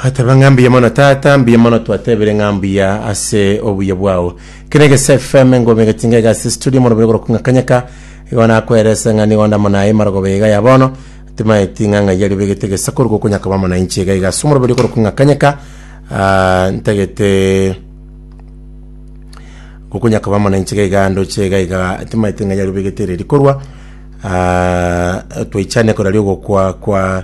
Ateba ng'a mbuya mono tata, mbuya mono twatebire ng'a mbuya ase obuya bwao. Kene gese FM ngome gatinga iga ase studio mono bigoro kunga kanyeka. Igo nakwerese ng'a nigo ndamo naye marogo beiga ya bono. Timaye tinga ng'a yari begete gesa korugo kunyaka bamo na inche iga iga ase omoro bigoro kunga kanyeka. Ah, ntagete gokunyaka bamo na inche iga iga ndoche iga iga timaye tinga yari begete reri korwa. Ah, twaichane korari ogokwa kwa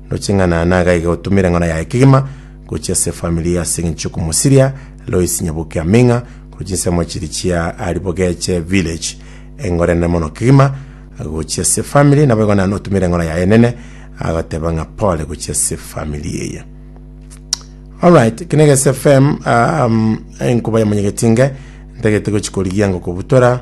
Noching'ana nagaiga gotumera eng'ora yaye kegima gochia ase efamiri ase engencho y'okomosiria Lois Nyabuke Aming'a korwa chinsemo chiria chia Aribogeche Village. Eng'ora enene mono kegima gochia ase efamiri naboigo naye notumera eng'ora yaye enene agoteba ng'a pole gochia ase efamiri eye. Alright, kene Gesi FM um, enkuba ya Monyegetinge ntagete gochi korigia ngo kobutora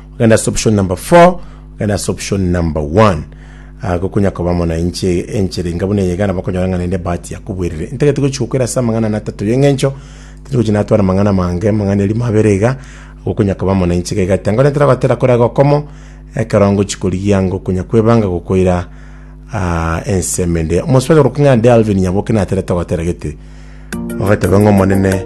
Ogenda ase option number four, ogenda ase option number one. Ah, gokonya koba mwananchi enchera inga buna eye igana bakonyora ng'a naende ebahati yakobwerire. Intagete gochi gokwera ase amang'ana ana atato y'eng'encho, tindi gochi natwara amang'ana mange, amang'ana erimo abere iga, gokonya koba mwananchi iga igati. Angore ntera goatera kore iga okomo, ekero ngochi korigia ngokonya kwebanga gokoira ah, ensemo ende. Omosubaji orokwa ng'a Delvin Nyaboke naterete gotera gete, ogateba ng'a Omonene